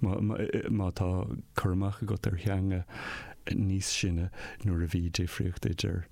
Má tá cur amach agat ar theanga níos sine nuair a bhí difríocht idir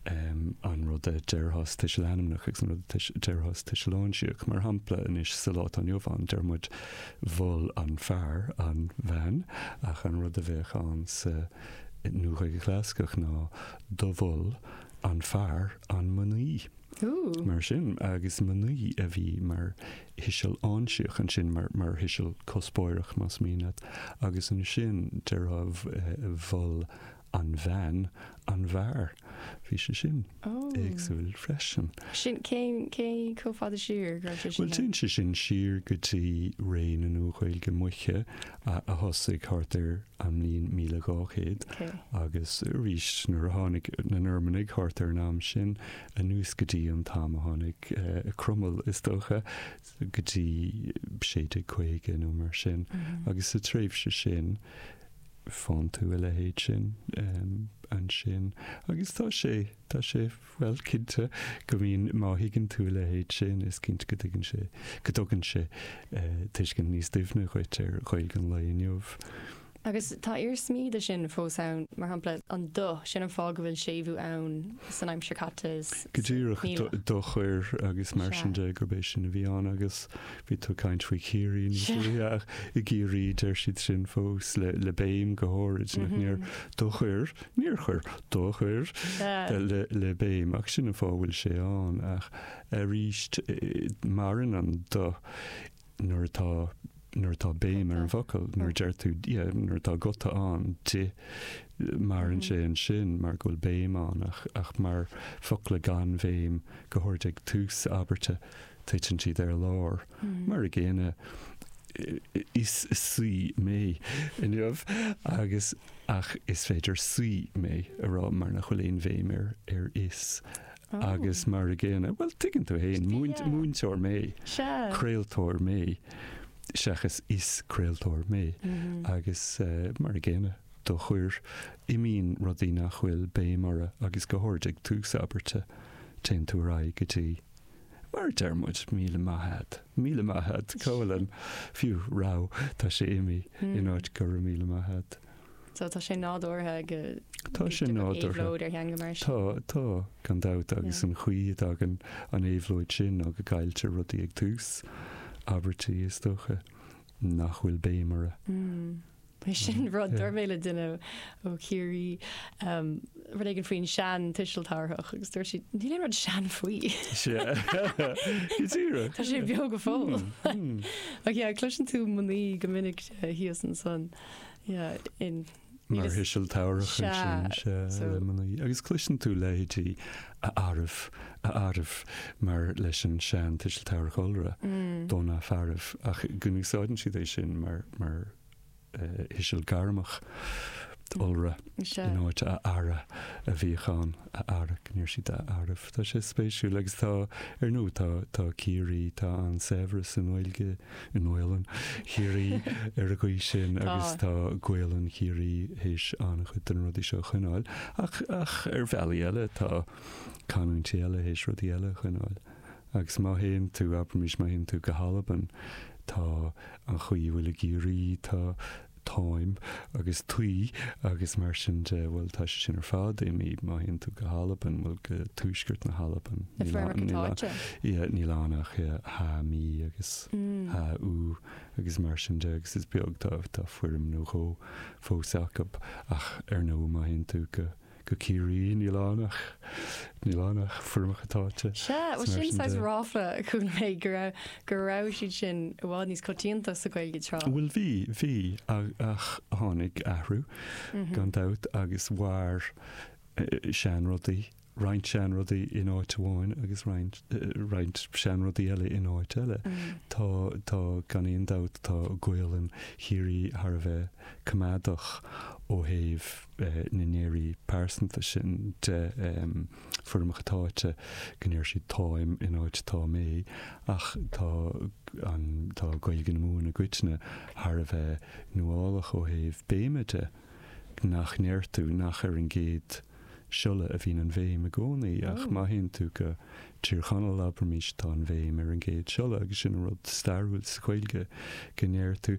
an rud a déarfá sa tuiseal ainmneach agus an rud a déarfá sa tuiseal áinsíoch, mar shampla anois sa lá atá inniu ann deir muid mhol an fear an bhean ach an rud a bheadh ann sa Nua-Ghaeilge Chlasaiceach ná do mhol an fear an mnaoi. Mar sin, agus mnaoi a bhí mar thuiseal áinsíoch ansin mar thuiseal cuspóireach, más mian leat, agus ansin déarfá mhol an bhean an bhfear. Bhí sé sin éagsúil freisin. Sin, cén, cé, chomh fada siar go raibh sé sin ann? Bhuel, téann sé sin siar go dtí ré na Nua-Ghaeilge Moiche a thosaigh thart ar an mbliain míle dhá chéad agus arís nuair a tháinig na Normannaigh thart ar an am sin, anuas go dtí an t-am a tháinig Cromail, is dócha, go dtí 1650 nó mar sin, agus sa tréimhse sin, faigheann tú a leithéid sin ansin. Agus tá sé, tá sé, bhuel, cinnte go mbíonn, má thuigeann tú a leithéid sin, is cinnte go dtugann sé, go dtugann sé tuiscint níos doimhne dhuit ar Ghaeilge an lae inniu. Agus tá iarsmaí de sin fós ann, mar shampla, an do, sin an fáth go bhfuil séimhiú ann san aimsir chaite is Go díreach, níl. do chuir agus mar sin Sea. de, gurb é sin a bhí ann. Agus bhí tú ag caint faoi Chiarraí níos Sea. luaithe ach i gCiarraí deir siad sin fós le, le béim go háirid, nach ndeir? Do chuir, níor chuir, do chuir Sea. eh, le, le béim, ach sin an fáth a bhfuil sé ann. Ach aríst, eh, maireann an do. nuair atá, nuair atá béim ar an bhfocal, nuair a deir tú, yeah, nuair atá guta ann, d'ith, maireann sé ansin mar go bhfuil béim ann, ach, ach mar focla gan bhéim, go háirid ag tús abairte, titeann siad ar lár. Mar a gcéanna, is saoi mé inniu, agus, ach is féidir saoi mé a rá mar nach bhfuil aon bhéim ar, ar is. Agus mar a gcéanna, bhuel, tuigeann tú féin, múinteoir mé, craoltóir mé, seachas is craoltóir mé, agus mar a gcéanna, do chuir, imíonn rudaí nach bhfuil béim orthu agus go háirid ag tús abairte, téann tú ar aghaidh go dtí, mar a deir muid, míle maith a'd, míle maith a'd, Colin, fiú, raibh, tá sé imithe, in áit go raibh míle maith a'd. So tá sé nádúrtha go bhfuil éabhlóid ar theanga mar sin. Tá, tá, gan dabht, agus an chaoi a dtagann an éabhlóid sin, nó go gcailltear rudaí ag tús abairtí, is dócha, nach bhfuil béim orthu. Bhuel, sin rud, dúirt mé le duine ó Chiarraí rud éigin faoin sean tuiseal tabharthach agus dúirt sí, níl aon rud sean faoi. Go díreach. Tá sé beo go fóill. Ach yeah, cloiseann tú mnaoi go minic thíos ansan. mar thuiseal tabharthach ansin le mnaoi, agus cloiseann tú leithéidí a fhearaibh, a fhearaibh, mar leis an sean-tuiseal tabharthach iolra, do na fearaibh, ach go n-úsáideann siad é sin mar thuiseal gairmeach iolra in áit a fheara a bhíodh ann, a fheara, go ndeir siad a fhearaibh. Tá sé spéisiúil, agus tá, ar ndóigh, tá Ciarraí, tá an-saibhreas i nGaeilge. i nGaolainn Chiarraí ar an gcaoi sin agus tá Gaolainn Chiarraí théis an-chuid de na rudaí seo a choinneáil ach, ach ar bhealaí eile tá canúintí eile théis rudaí eile a choinneáil agus má théann tú, abraimís, má théann tú go hAlbain tá an chaoi a bhfuil i gCiarraí, tá táim, agus taoi, agus mar sin de, bhuel, tá sé sin ar fad imithe, má théann tú go hAlbain, bhuel, go tuaisceart na hAlban, na foirmeacha táite, yeah, níl ann ach ha mí agus mm. ha ú agus mar sin de, agus is beag tá tá foirm nó dhó fós acu ach ar ndóigh má théann tú go go Ciarraí níl ann ach níl ann ach foirmeacha táite. Sea, bhuel sin saghas ráfla a chuala mé go raibh go raibh siad sin i bhfad níos coitianta sa Ghaeilge tráth. Bhuel bhí, bhí ach tháinig athrú gan dabht agus mhair seanrudaí, roinnt seanrudaí in áit amháin agus roinnt, roinnt seanrudaí eile in áit eile. Tá, tá gan aon dabht tá Gaolainn Chiarraí thar a bheith coimeádach ó thaobh, na ndeirí pearsanta sin de foirmeacha táite, go ndeir siad táim in áit tá mé, ach tá an, tá Gaeilge na Mumhan i gcoitinne thar a bheith nuálach ó thaobh béime de, nach ndeir tú nach ar an gcéad siolla a bhíonn an bhéim i gcónaí, ach má théann tú go Tír Chonaill, abraimís, tá an bhéim ar an gcéad siolla, agus sin an rud stairiúil sa Ghaeilge, go ndeir tú.